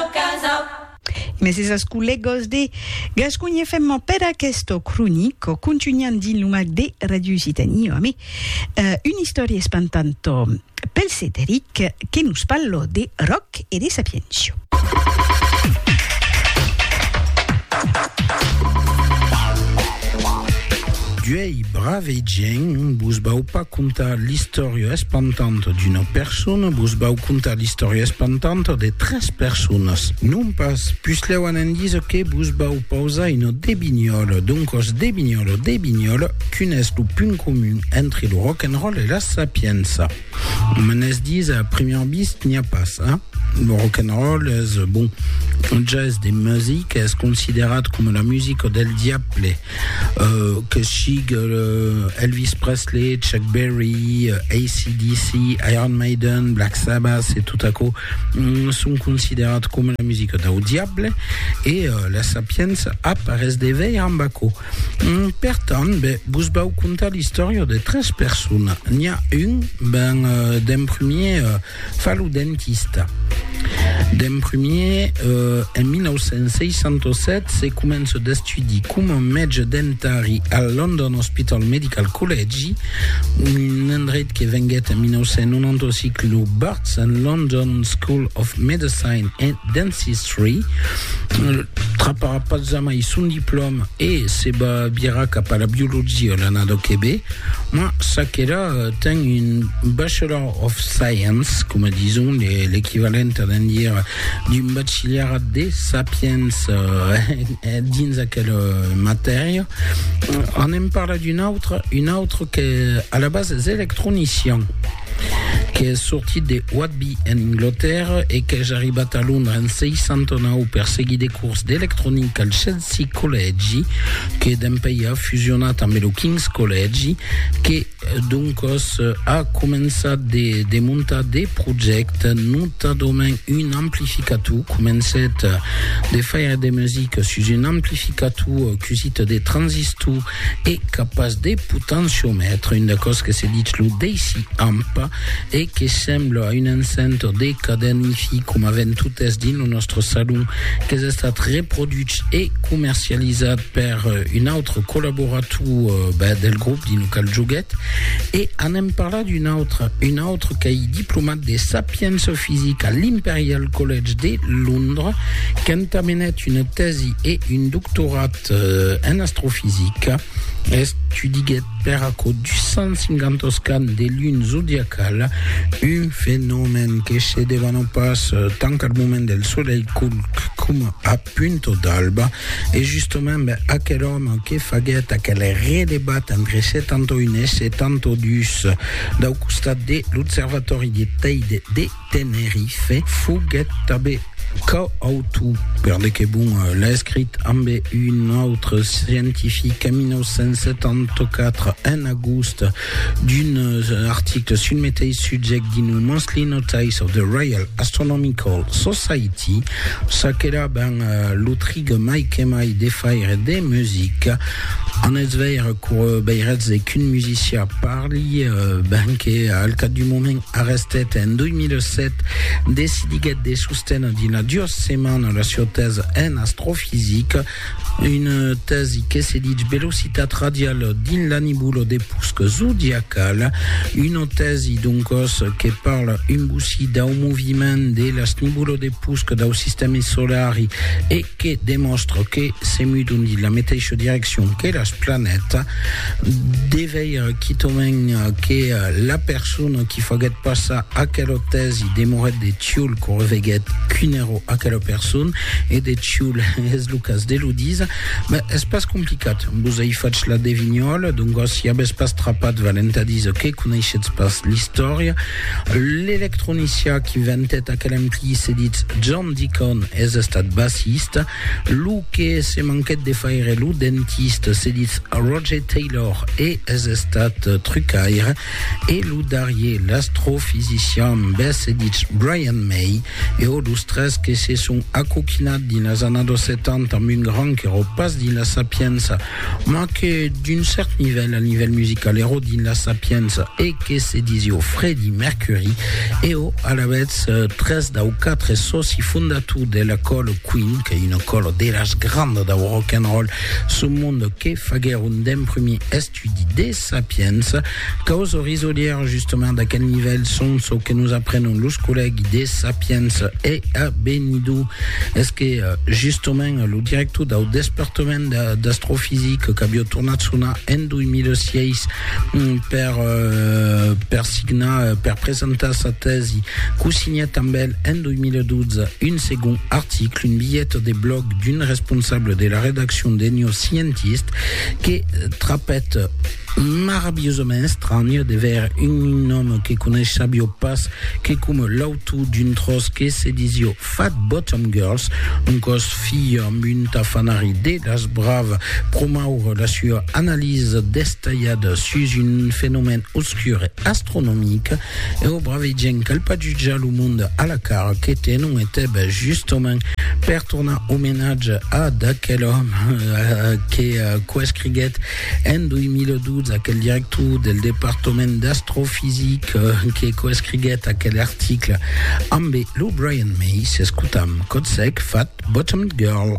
casa. Mes esas collegos de Gasconha FM per aquesto cronico contunhan dins lo mac de Radio Occitanie amé una istòria espantanto pel Cederic que nos parlo de Roc e de Sapiencio. D'uei brave gent, vos vau pas contar l'istòria espantanta d'una persona, vos vau contar l'istòria espantanta de tres personas. Non pas, puslèu an endís que vos vau pausar una debinhòla, doncòs debinhòla, debinhòla, quin es lo punt comun entre lo rock and roll e la sapiença? Me n'es dís a primièr vist n'i a pas, a? Lo rock'n'roll es, bon, un ges de music, es considerat coma la musica del diable, que sigue Elvis Presley, Chuck Berry, AC/DC, Iron Maiden, Black Sabbath e tot aquò, son considerat coma la musica dau diable, e la Sapienza ap arrés de veir amb aquò. Per tant, be, vos vau contar l'istòria de tres persona. N'i a un, ben, d'en premier, fa lo dentista. D'en premier, en 1967, se comença d'estudi coma mètge dentari al London Hospital Medical Collegi, un endreit que venguèt en 1995 lo Barts and London School of Medicine and Dentistry. Free. Traparà pas jamai son diplòma e se va virar cap a la biologia l'anada que ve, ma Sakera ten un Bachelor of Science, coma dison, l'equivalent a d'en dire d'un bachillerat de sapiens eh, dins aquela matèria. Anem parlar d'un autre, un autre que a la base es electronician. qu'es sortit de Whitby en Englotèrra e qu'es arribat a Londra en 69 per seguir de cors d'electronica al Chelsea Collègi que dempèi a fusionat ambe lo King's Collègi que doncòs a començat de de montar de projècte notadament un amplificator comencèt de faire de musica sus un amplificator cusit de transistor e qu'a pas de potenciomètre, un d'aquò's que se ditz lo Daisy Amp e que sembla a un enceint de cadèn Hi-Fi coma ven totes dins lo nòstre salon, qu'es estat reproduch e comercializat per un autre collaborator ben del grop dins lo qual joguèt e anem parlar d'un autre, un autre qu'ei diplomat de Sapiença Fisica a l'Imperial College de Londres, qu'entamenèt una tèsi e un doctorat En astrofisica, estudiguèt per aquò 250 oscans de luna zodiacala, un fenomèn que se devana pas tant al moment del solelh culc coma a punta d'alba. E justament aquel òme que faguèt aquel redebat entre 71 e 72 dau costat de l'observatòri de Teide de Tenerife foguèt tanben coautor, per de que bon l'escrit, ambe un autre scientific en 1974, en agost, d'un article sul meteis subject dins lo Monthly Notice of the Royal Astronomical Society, ça qu'èra ben lo trig mai que mai de faire de musica. En eth veire cour veiretz qu'un musician parli, ben que al cap d'un moment Arrestet en 2007, decidiguèt de sostener dina duas setmanas la sieu tèsa en astrofisica, una tèsi que se ditz velocitat radiala dins la nebula de pusc zodiacala, una tèsi doncòs que parla un bocí dau moviment de las nebulas de pusc dau sistèmi solari e que demòstra que se mudon dins la meteisha direccion que las planeta, de veire quitament que la persona qui faguèt passar aquela tèsi demorèt de Tioul quand reveguèt qu'un èro aquela persona, e de Tioul es lo cas de lo díser, ben, es pas complicat, vos ai fach la devinhòla, doncas si avètz pas trapat valent a díser que coneishetz pas l'istòria, l'electronicien qu'inventèt aquel ampli se ditz John. Dicon es estat bassista, lo que se manquèt de faire lo dentista, se ditz Roger Taylor e es estat trucaire, e lo darrier l'astrofisician bes se ditz Brian May, e ò los tres que se son acoquinat dins las annados 70 amb un gran qu'erò pas dins la sapiença, Ma que d'un cèrt nivèl, al nivèl musical, ero dins la Sapienza e que se disio Fredi Mercuri, eo alavetz tres dau quatre sòci fondator de la còla Queen, qu'ei una còla de las grandas dau rock and roll sul monde que faguèron d'emprumir estudi de Sapienza, Causes risolièras justement d'aquel nivèl son çò que nos aprenon los collègues de Sapiens e a Benidó es que justement lo director dau despertament d'astrofisica qu'avió tornat sonar en 2006 per, per signar, per presentar sa tèsi, qu'o signèt amb el en 2012 un segond article, un bilhet de blòg d'un responsable de la redaccion de New Scientist que trapèt, Maravilhosament estranh de ver un òme que conesh sabió pas que coma l'autor d'un tròç que se disió Fat Bottom Girls, un còs filh amb un tafanari de las braves, promoure la sua analisa destalhada sus un fenomèn obscur e astronomic, eu bravegenc al pajujar lo monde a la cara que tenon e teb justament per tornar omenatge a d'aquel òme que coescriguèt En 2012, aquel director del departament d'astrofisica que coescriguèt aquel article ambe lo Brian May, s'escotam Kotsek fat Bottomed Girl.